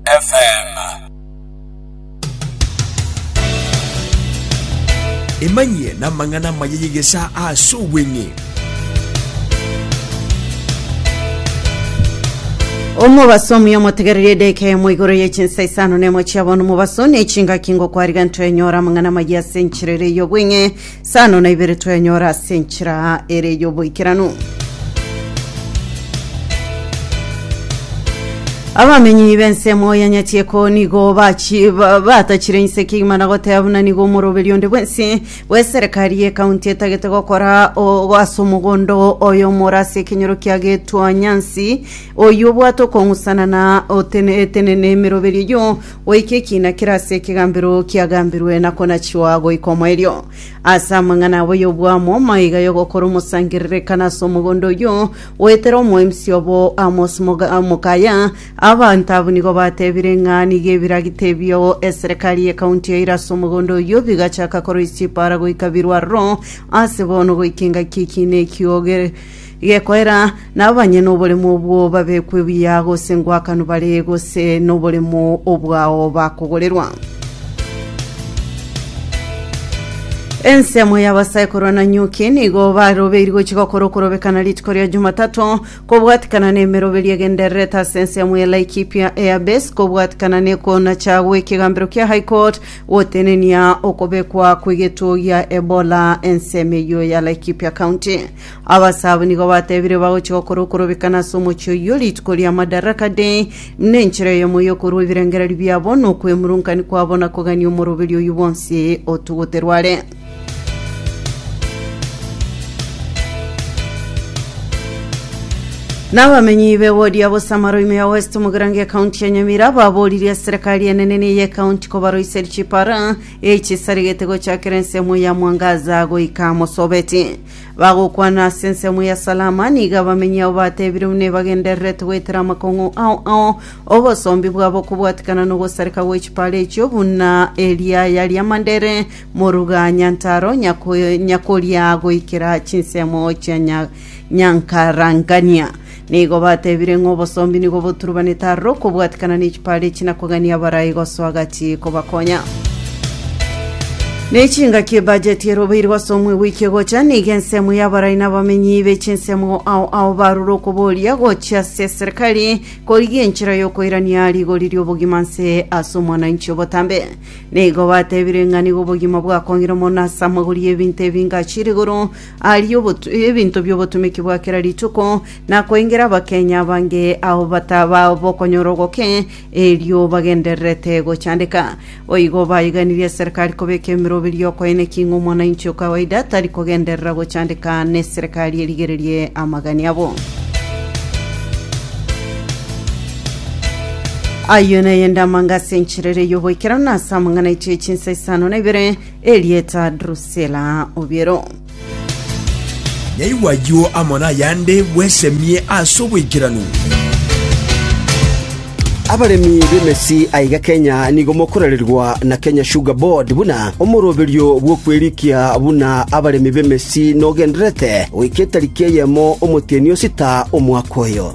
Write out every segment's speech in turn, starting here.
FM. Emanyie n'amang'ana amaya y'egesaa ase obweng'e. omobaso omuya omotegererie edeka emo igoro ye chinsa isano nemo chiabona omobaso ne chingaki ngokwariga ntoenyora amang'ana amaya ase enchirere y'obweng'e Sano na ibere twenyora ase enchera ere y'oboikeranu. Abamenyi b'ensemo ya Nyatieko nigo bachi- ba- batachire inse kegima na goteba buna nigo omoroberi onde bwensi bw'eserekari y'ekaunti etagete gokora o- ase omogondo oyo omoro ase ekenyoro kia Getwanyansi oyio obwate okong'usana na otene- etenene emeroberi eyio goika ekiina kere ase ekegambero kiagambirwe na konachua goika omoerio. Ase amang'ana abo y'obwamo, maiga y'ogokora omosangererekano ase omogondo oyio, goetera omoemsi obo Amos moga- mokaya, abanto abwo nigo batebire ng'a nigo ebiragita ebio eserekari y'ekaunti yaire ase omogondo oyio bigachaka koroisia epaara goika birwarero ase bono goika engaki y'ekiina ekio gere Gekoera, na abanyene oboremu obwo babekwe buya gose ngwakanu bare gose noboremu obwao bakogorerwa. Ensemo y'abasaikoro na nyuki nigo barobeiri gochi gokora okorobekana rituko ria Jumatato kobwatikana n'emeroberio egendererete ase ensemo ya Laikipia Airbase kobwatikana nekona chagwa ekegambero kia High Court gotenenia okobekwa kw'egetuo gia Ebola ensemo eyio ya Laikipia County. Abasaabo nigo bateebire bagochia gokora okorobekana ase omochie oyio rituko ria Madaraka Day, buna enchera eyemo y'okorua ebirengererio biabo, na okwemurunka kwabo, na kogania omoroberi oyio bwonsi otuguterwe are. N'abamenyi b'ewodi ya Bosamaro ime ya West Mugirango ekaunti ya Nyamira baboririe eserekari enene na ey'ekaunti kobaroiseria chipara echisaregete gochakera ensemo ya mwangaza goika mosobeti. Bagokwana ase ensemo ya Salama, nigo abamenyi ao batebire buna ebagendererete goetera amakong'u ao ao, obosombi bwabo kobwatikana nogosareka gwe chipara echio buna eriaya ri'amandere, moruga nyantaro, nyako, nyakoria goikera chinsemo chia nya, nyankarangania. Nigo batebire ng'a obosombi nigo boturubanete aroro okobwatikana ne chipaara echi na kogania abarai gosoa gati kobakonya. Ne chingaki ebudget erobeirwe ase omwego oike gocha, nigo ensemo y'abarai na abamenyi be chinsemo ao ao barure okoboria gochia ase eserekari korigia enchera y'okoirania rigori ri'obogima nse ase omwananchi obotambe. Nigo batebire ng'a nigo obogima bwakongire mono ase amagori y'ebinto ebingachi rigoro Aria obotu- ebinto bi'obotomiki bwa kera rituko, na koengera abakenya abange ao bataba bokonyora ogoke, erio bagendererete gochandeka. Boigo baiganirie eserekari kobeka emeroberi y'okoenekia ng'a omwananchi o kawaida tari kogenderera gochandeka neserekari erigererie amagani abo. Ayio nayende amangase encherere y'oboikeranu ase amang'ana aitire chinsa isano na ibere, Erieta Drusila obiero. Nyaigwe ayio amo nayande bwesemie ase oboikeranu. Abaremi b'emesi aiga Kenya nigo mokorererwa na Kenya Sugar Board buna omoroberio bw'okwerikia buna abaremi b'emesi nogendererete goika etariki eyemo omotienyi osita omwaka oyo.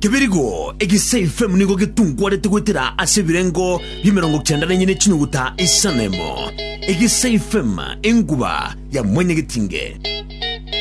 Kebirigo eke Seifemu nigo getungwarete goetera ase ebirengo bi'emerongo kenda nenye ne chinyuguta isano emo, eke Seifemu enguba ya mwenyegetinge.